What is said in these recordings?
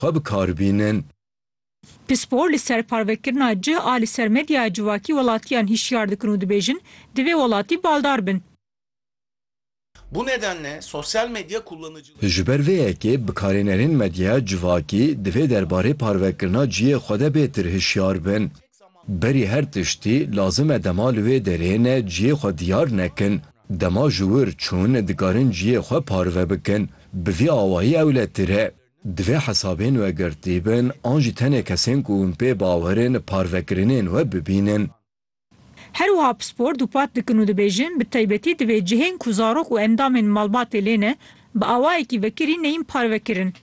xwe bi kar bînin. Pispor li ser parvekirina cih a li ser medyaya civakî welatiyan hişyar dikin û dibêjin, divê welatî baldar bin. Bu nedenle sosyal medya kullanıcıları. Ji ber vê yekê bikarênerên medyaya civakî divê derbarê parvekirina cihê xwe de bêtir hişyar bin. Berî her tiştî, lazim e dema li wê derê ne cihê xwe diyar nekin, dema ji wir çûn dikarin cihê xwe parve bikin. Bi vî awayî ewletir e. Divê hesabên we girtî bin an jî tenê kesên ku hûn pê bawer in parvekirinên we bibînin. Her wiha pispor dûpat dikin û dibêjin bi taybetî divê cihên ku zarok û endamên malbatê lê ne bi awayekî vekirî neyên parvekirin.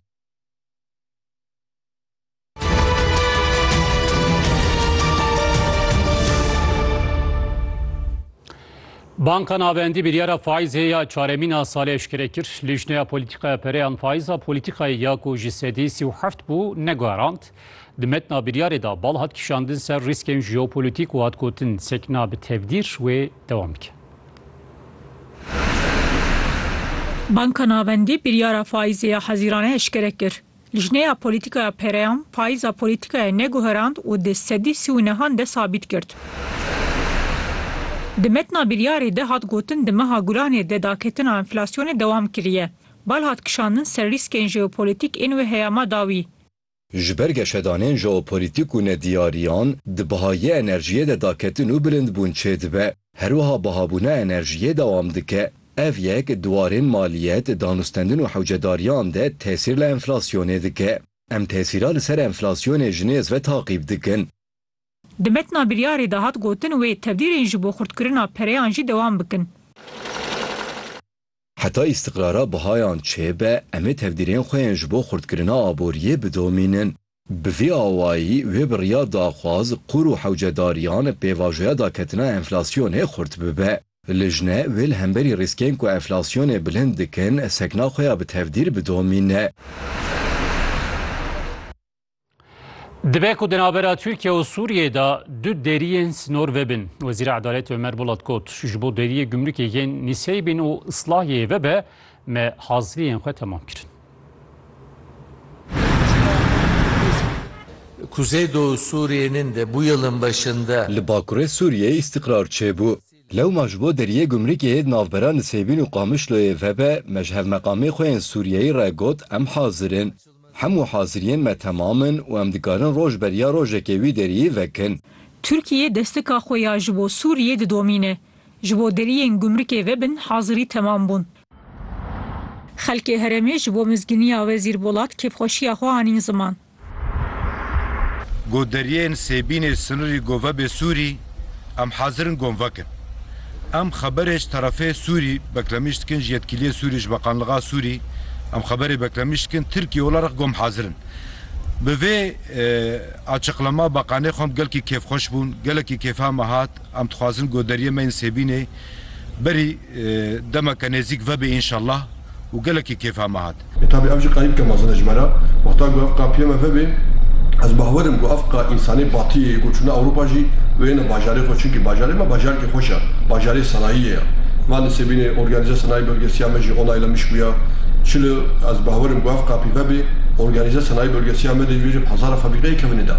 Banka Navendî biryara faîzê ya çaremîna salê eşkere kir. Lîjneya polîtîkaya pereyan faîza polîtîkayê ya ku ji sedî sî û heft bû neguherand. Di metna biryarê de bal hat kişandin ser rîskên jeopolîtîk û hat gotin sekna bi tevdîr wê dewam bike. Banka Navendî biryara faîzê ya hezîrane eşkere kir. Lijneya Polîtîkaya Pereyan payîza polîtîkayê neguherand û di sedî sî û nehan de sabît girt. Di metna biryarê de hat gotin di meha Gulanê de daketina enflasyonê dewam kiriye. Bal hat kişandin ser rîskên jeopolîtîk ên wê heyama dawî. Ji ber geşedanên jeopolîtîk û nediyariyan di bihayê enerjiyê de daketin û bilindbûn çêdibe. Herwiha bihabûna enerjiyê dewam dike. Ev yek di warên maliyet, danûstendin û hewcedariyan de tesîr li enflasyonê dike. Em tesîra li ser enflasyonê ji nêz ve taqîb dikin. Di metna biryarê de hat gotin wê tevdîrên ji bo xurtkirina pereyan jî dewam bikin. Heta îstiqrara bihayan çêbe, em ê tevdîrên xwe yên ji bo xurtkirina aboriyê bidomînin. Bi vî awayî wê biryar daxwaz qûr û hewcedariyan pêvajoya daketina enflasyonê xurt bibe. Lijne wê li hemberî rîskên ku enflasyonê bilind dikin sekna xwe ya bi tevdîr bidomîne. Dibe ku di navbera Tirkiye û Sûriyeyê de du deriyên sînor vebin. Wezîra Edaletê Ömer Bolat got, Ji bo deriyê gumrukê yên Niseyê bên û Islahyeyê vebe me haziriyên xwe temam kirin. Kuzeydoğu Suriye'nin de bu yılın başında. Li bakurê Sûriyeyê îstîqrar çêbû. Lewma ji bo deriyê gumrikê yê di navbera Nisêbîn û Qamişloyê vebe, me ji hevmeqamê xwe yên Sûriyeyî re got em hazir in. Hemû haziriyên me temam in û em dikarin roj beriya rojekê wî deriyî vekin. Tirkiyê destika xwe ya ji bo Sûriyê didomîne. Ji bo deriyên gumrikê vebin hazirî temam bûn. Xelkê herêmê ji bo mizgîniya Wezîr Bolat kêfxweşiya xwe anîn ziman. Got deriyên sêbînê sinirî gove bê Sûrî, em hazir in gon vekin. Em xeberê ji terefê Sûrî beklemij dikin ji yetkîliyê Sûrî ji Beqanliga Sûrî em xeberê beklemij dikin Tirkîye wila rex gom hazir in. Bi vê açıqlama Beqanê xwem gelkî kêfxweş bûn, gelekî kêfa me hat. Em dixwazin ku deriyê me yên Sêbînê berî demeke nêzîk vebe înşellah û gelekî kêfa me hat. Lê tabî ev jî qayîl bike mezin e ji me re. Wexta ku ev qapiyê me vebe ez bawer im ku ev ka însanê batiyê yê ku çûna Ewropa jî wêne bajarê xwe çunkî bajarê me bajarkî xweş e, bajarê sanayiyê ye. Van li Sêbînê Organize Sanayi Bölgesi ya me jî onayla mişk bûye. Çili ez bawer im ku ev qapî vebe Organize Sanayi Bölgesi ya me de ji wê jî hezara febrîqeyê kevine de.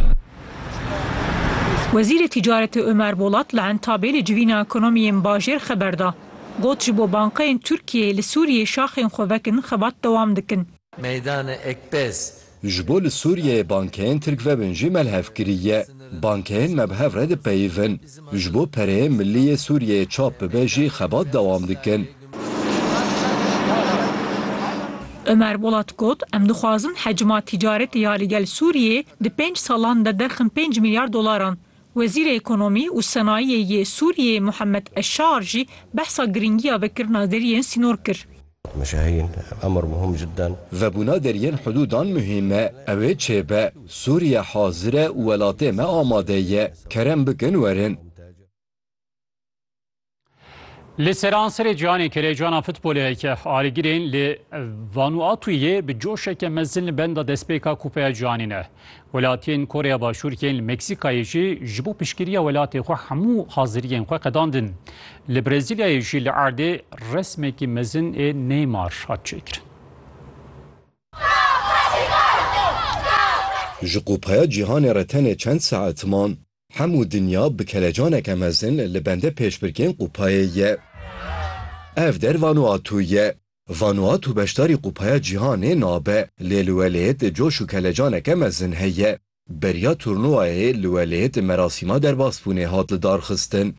Wezîrê Tîcaretê Omer Bolat li Entabê li civîna ekonomiyên bajêr xeber da. Got ji bo bankayên Tirkiyeyê li Sûriyeyê şaxên xwe vekin xebat dewam dikin. Meydanê Ekpez. Ji bo li Sûriyeyê bankeyên Tirk vebin jî melhevkirî ye. Bankeyên me bi hev re dipeyivin. Ji bo pereyê milî yê Sûriyeyê çap bibe jî xebat dewam dikin. Ömer Bolat got, Em dixwazin hecma tîcaretê ya li gel Sûriyeyê di pênc salan de derxin pênc milyar dolaran. Wezîrê Ekonomî û Senayiyê yê Sûriyeyê Muhammed Eşşaar jî behsa girîngiya vekirina deriyên sînor kir. Me şahîn, emr muhim cidden. Vebûna deriyên hidûdan muhîm e. Ew ê çêbe. Sûriye hazir e û welatê me amade ye. Kerem bikin werin. Li seranserê cîhanê kerejana futboleke alîgirên li Vanuatuyê bi coşeke mezin li benda destpêka Kupeya Cîhanê ne. Welatiyên Koreya Başûr yên li Meksîkayê jî ji bo piştgiriya welatê xwe hemû haziriyên xwe qedandin. Li Brezîlyayê jî li erdê resmekî mezin ê Neymar hat çêkirin. Ji Kupaya Cîhanê re tenê çend saet man, hemû dinya bi kelecaneke mezin li bende pêşbirkên kupayê ye. Ev der Vanuatu ye, Vanuatu beşdarî Kupaya Cîhanê nabe, lê li welêt coş û kelecaneke mezin heye. Beriya turnûwayê li welêt merasîma derbasbûnê hat lidarxistin.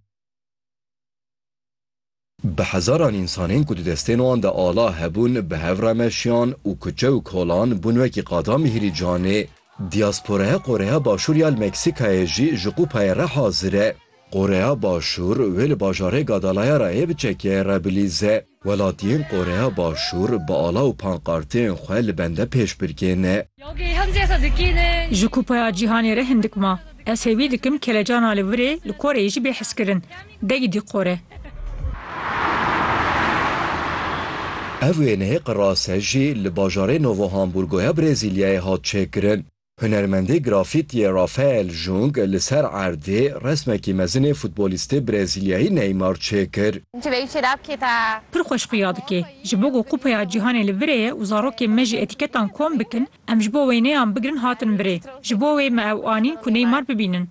Bi hezaran însanên ku di destên wan de ala hebûn bi hev re meşiyan û kuçe û kolan bûn wekî qada mîhrîcanê. Diyasporaya Koreya Başûr ya li Meksîkayê jî ji Kupayê re hazir e. Qoreya Başûr wê li bajarê Gadalayarayê bi çekiyayê re bilîze. Welatiyên Qoreya Başûr bi ala û pankarteyên xwe li bende pêşbirkê ne. Ji Kupaya Cîhanê re hindik ma. Ez hêvî dikim kelecana li virê li Koreyê jî bê hizkirin. Degidî Kore! Ev wêneyê qirase jî li bajarê Novo Hamburgoya Brezîlyayê hat çêkirin. Hunermendê grafîtiyê Rafael Jung li ser erdê resmekî mezinê futbolîstê Brezîlyayî Neymar çêkir. Pir xweş xuya dike. Ji bo ku Kupeya Cîhanê li virê ye û zarokên me jî etîketan kom bikin, em ji bo wêneyan bigirin hatin virê. Ji bo wê me ew anîn ku Neymar bibînin.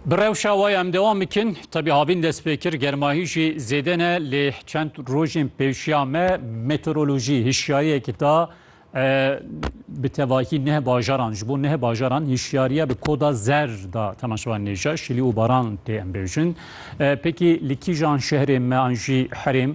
Bi rewşa waya em dewam bikin, tebî havîn dest pê kir germahî jî zêde ne lê çend rojên pêşiya me meteorolojî hişyariyekî da bi tevahî neh bajaran ji bo neh bajaran hişyariye bi koda zer da temaşevan nêja şilî û baran tê em bêjin. Pekî li kîjan şehrê me an jî herêm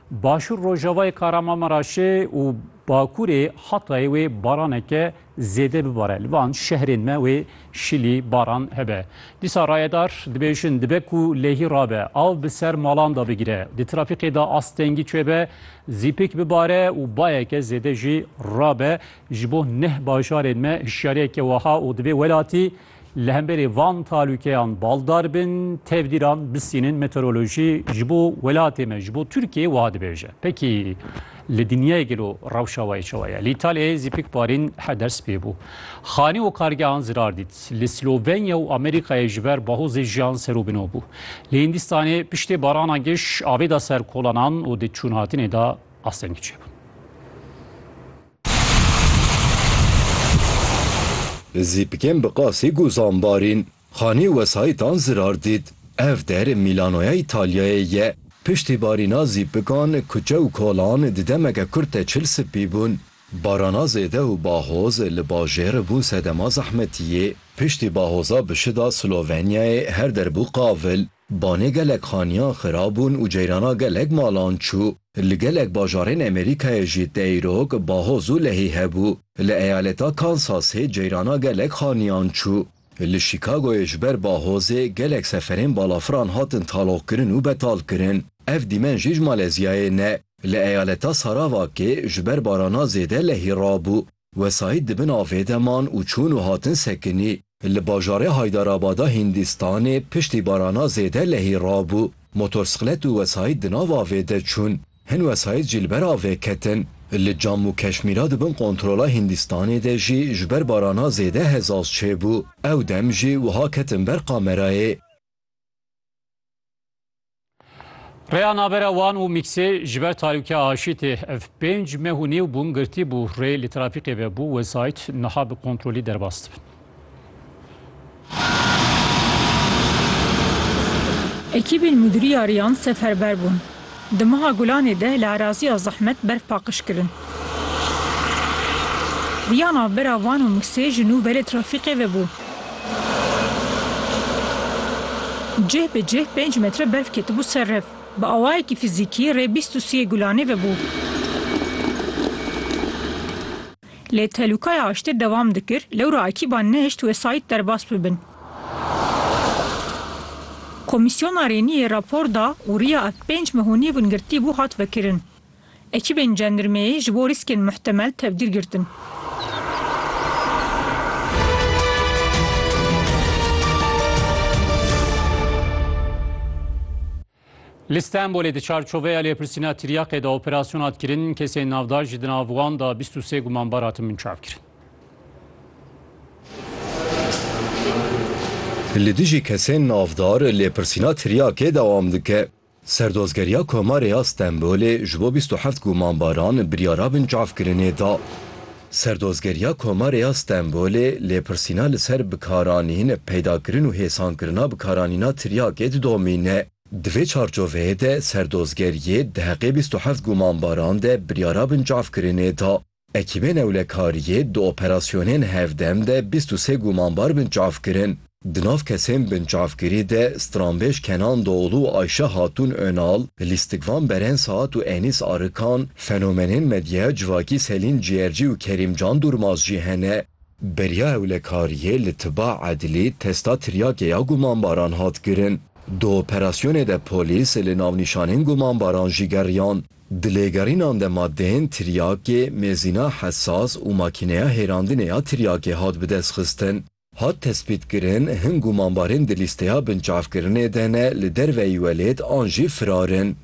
Başûr rojavayê Kahramanmaraşê û bakurê Hatayê wê baraneke zêde bibare. Li van şehrên me wê şilî baran hebe. Dîsa rayedar dibêjin dibe ku lehî rabe, av bi ser malan de bigire, di trafîkê de astengî çêbe, zîpik bibare û bayeke zêde jî rabe. Ji bo neh bajarên me hişyariyeke weha û divê welatî Li hemberî van talûkeyan baldar bin, tevdîran bisînin meteorolojî ji bo welatê me, ji bo Tirkiyeyê wiha dibêje. Pekî li dinyayê gelo rewşa wayê çawa ye? Li Îtalyayê zî pik barîn heder spî bû. Xanî û kargehan zirar dît. Li Slovenya û Amerîkayê ji ber bahozê jiyan ser û bino bû. Li Hîndîstanê piştê barana giş avê da ser kolanan û di çûnhatinê de astengî çêbûn. Zîpikên bi qasîk û zanbarîn, xanî û wesayîtan zirar dît. Ev der Mîlanoya Îtalyayê ye. Piştî barîna zîpikan, kuçe û kolan di demeke kurt de çil sipî bûn. Barana zêde û bahoz li bajêr bûn sedema zehmetiyê. Piştî bahoza bi şida Slovenyayê her der bû qavil. Banê gelek xaniyan xirab bûn û ceyrana gelek malan çû. Li gelek bajarên Amerîkayê jî teyrok, bahoz û lehî hebû. Li eyaleta Kansasê ceyrana gelek xaniyan çû. Li Şîkagoyê ji ber bahozê gelek seferên balafiran hatin taloqkirin û betalkirin. Ev dîmen jî ji Malezyayê ne. Li eyaleta Sarawakê ji ber barana zêde lehî rabû. Wesayît di bin avê de man û çûn û hatin sekinî. Li bajarê Haydarabada Hîndîstanê piştî barana zêde lehî rabû. Motorsiklet û wesayît di nav avê de çûn. Hin wesayît jî li ber avê ketin. Li Cammû Keşmîra di bin kontrola Hîndîstanê de jî ji ber barana zêde hezaz çêbû. Ew dem jî wiha ketin ber kamerayê. Rêya navbera wan û mîksê ji ber tarîûkiya aşî tê. Ev pênc meh û nîw bûn girtî bû. Rê li trafîkê ve bû wesayît niha bi kontrolî derbas dibin. Ekîbên Mudîriya Rêyan seferber bûn. Di meha Gulanê de li eraziya zehmet berf paqij kirin. Rêya navbera wan û mîksê ji nû ve li trafîkê ve bû. Cih bi cih pênc metre berf ketibû ser rev. Bi awayekî fîzîkî rê bîst û siyê gulanê vebû. Lê telûkaya aştê dewam dikir, lewra ekîban nehişt wesayît derbas bibin. Komîsyona Rêniyê rapor da û riya ev pênc mehûnî wingirtî bû hat vekirin. Ekîbên cendirmeyê ji bo rîskên muhtemel tevgîr girtin. Li Stenbolê di çarçoveya lêpirsîna tiryaqê de operasyona hat kirin, kesên navdar jî di nav wan de bîst û sê gumanbar hatin binçavkirin. Li dijî kesên navdar lêpirsîna tiryaqê dewam dike. Serdozgeriya Komarê ya Stenbolê ji bo bîst û heft gumanbaran biryara binçavkirinê da. Serdozgeriya Komarê ya Stenbolê lêpirsîna li ser bikaranîn, peydakirin û hêsankirina bikaranîna tiryakê didomîne. Di vê çarçoveyê de serdozgeriyê di heqê bîst û heft gumanbaran de biryara binçavkirinê da. Ekîbên ewlekariyê di operasyonên hevdem de bîst û sê gumanbar binçav kirin. Di nav kesên binçavkirî de stranbêj Kenan Doğulu û Ayşe Hatun Önal, lîstikvan Beren Saat û Enis Arıkan, fenomenên medyaya civakî Selin Ciğerci û Kerim Can Durmaz jî hene. Beriya ewlekariyê li tiba edlî testa tiryakê ya gumanbaran hat kirin. Di operasyonê de polîs li navnîşanên gumanbaran jî geriyan. Di lêgerînan de madeyên tiryakê, mêzîna hesas û makîneya hêrandinê ya tiryakê hat bidestxistin. Hat tespîtkirin hin gumanbarên di lîsteya binçavkirinê de ne li derveyî welêt an jî firar in.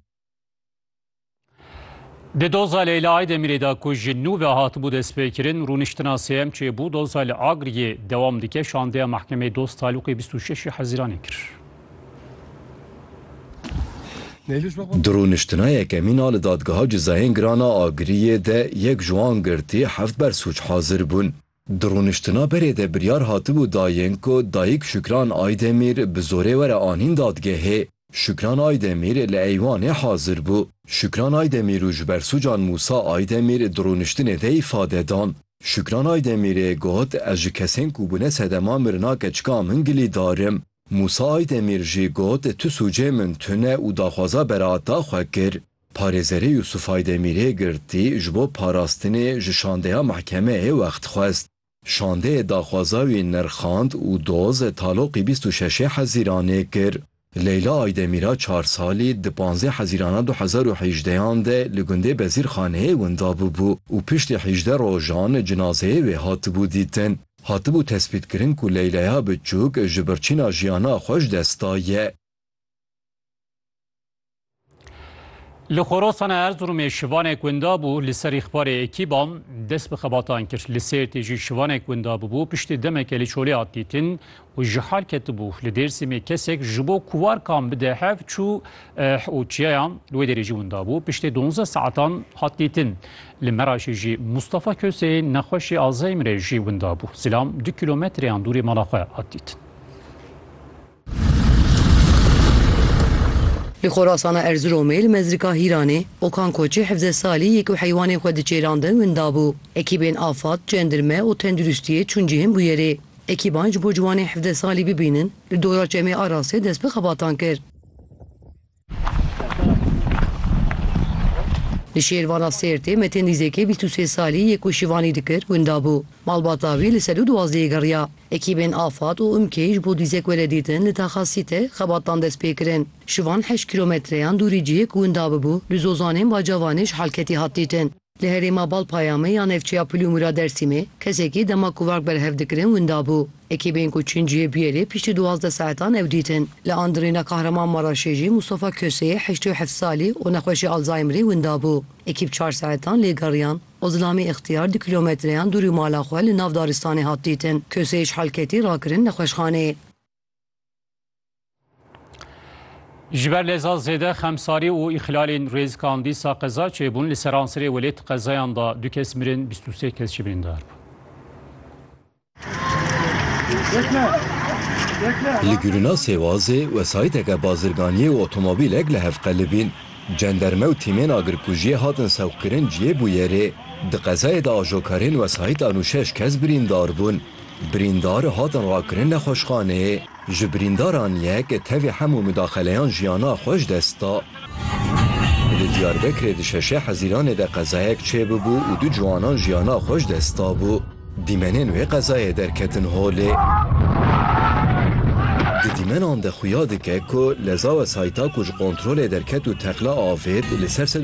Di doza Leyla Aydemirê de ku ji nû ve hatibû destpêkirin, rûniştina sêyem çêbû. Doza li Agiriyê dewam dike. Şandeya Mehkemeyê Dost Talûqê bîst û şeş hezîranê kir. Di rûniştina yekemîn a li Dadgeha Cezayên Giran a Agiriyê de yek ji wan girtî heft bersûc hazir bûn. Di rûniştina berê de biryar hatibû dayên ku dayik Şükran Aydemîr bi zorê were anîn dadgehê. Şükran Aydemîr li eywanê hazir bû. Şükran Aydemîr û ji bersûcan Mûsa Aydemîr di rûniştinê de îfade dan. Şükran Aydemîrê got, Ez ji kesên ku bûne sedema mirina keçika min gilîdar im. Mûsa Aydemîr jî got tu sûcê min tune û daxwaza beraata xwe kir. Parêzerê Yûsûf Aydemîrê girtî ji bo parastinê ji şandeya mehkemeyê wext xwest. Şandeyê daxwaza wî nirxand û doz taloqî bîst û şeşê Hezîranê kir. Leyla Aydemîra çar salî di panzdeh Hezîrana du hezar û hejdeyan de li gundê Bezîrxaneyê winda bûbû û piştî hîjdeh rojan cinazeyê wê hatibû dîtin. Hatibû tespîtkirin ku Leyleya Biçûk ji birçîna jiyana xwe ji dest daye. Li Xorasana Erzurumê şivanek winda bû, li ser îxbarê ekîban dest bi xebatan kir. Li Sêrtê jî şivanek winda bûbû, piştî demeke li çolê hat dîtin û ji hal ketibû. Li Dêrsimê kesek ji bo ku warkan bide hev çû û çiyayan li wê derê jî winda bû. Piştê duwazdeh saetan hat dîtin. Li Meraşê jî Mustafa Köse yê nexweşê Alzheimerê jî winda bû. Zilam du kîlometreyan dûrê mala xwe hat dîtin. Li Xorasana Erziromê li Mezrika Hîranê Okan Koçê hevdeh salî yek û heywanên xwe diçêrandin winda bû. Ekîbên afad, cendirme û tenduristiyê çûn cihên bûyerê. Ekîban ji bo ciwanên hevdeh salî bibînin li dora Çemê Arasê dest bi xebatan kir. Li Şêrvana Sêrtê Metên Dîzekê bîst û sê salî yê ku şivanî dikir winda bû. Malbata wî li sedû duwazdehê geriya. Ekîbên Afad û Umkê ji bo dîzek were dîtin li Taxa Sîte xebatan dest pê kirin. Şivan heşt kîlometreyan dûrî cihê ku winda bibû li Zozanên Bacavanê ji halketî hat dîtin. Li herêma Bal Payamê ya navçeya Pulûmûr a Dêrsimê kesekî dema ku varg berhev dikirin winda bû. Ekîbên ku çûn cihê bûyerê piştî duwazdeh saetan ew dîtin. Li Andirêna Kahraman Maraşê jî Mustafa Kosê heştê û heft salî û nexweşê Alzheimerê winda bû. Ekîb çar saetan lê geriyan. Ozlamî Îxtiyar du kîlometreyan dûrî mala xwe li nav daristanê hat dîtin. Kosê ji halketî rakirin nexweşxaneyê. Ji ber leza zêde xemsarî û îxlalên rêzikan dîsa qeza çêbûn li seransirê welêt qezayan da du kes mirin 23 kes jî birîndar bûn. Li Gurina Sêwazê wesayîteke bazirganiyê û otomobîlek li hev qelibîn. Cenderme û tîmên agirkujiyê hatin sewqkirin cihê bûyerê. Di qezayê de ajokarên wesayît an û şeş kes birîndar bûn. Birîndar hatin rakirin li xweşxanê, ji birîndaran yek tevî hemû mudaxeleyan jiyana xwe ji dest da. Li Diyarbekirê di şeşê Hezîranê de qezayek çêbûbû û du ciwanan jiyana xwe ji dest dabû. Dîmenên wê qezayê derketin holê. Di dîmenan de xuya dike ku leza wesayîta ku ji kontrolê derket û teqla avêt li ser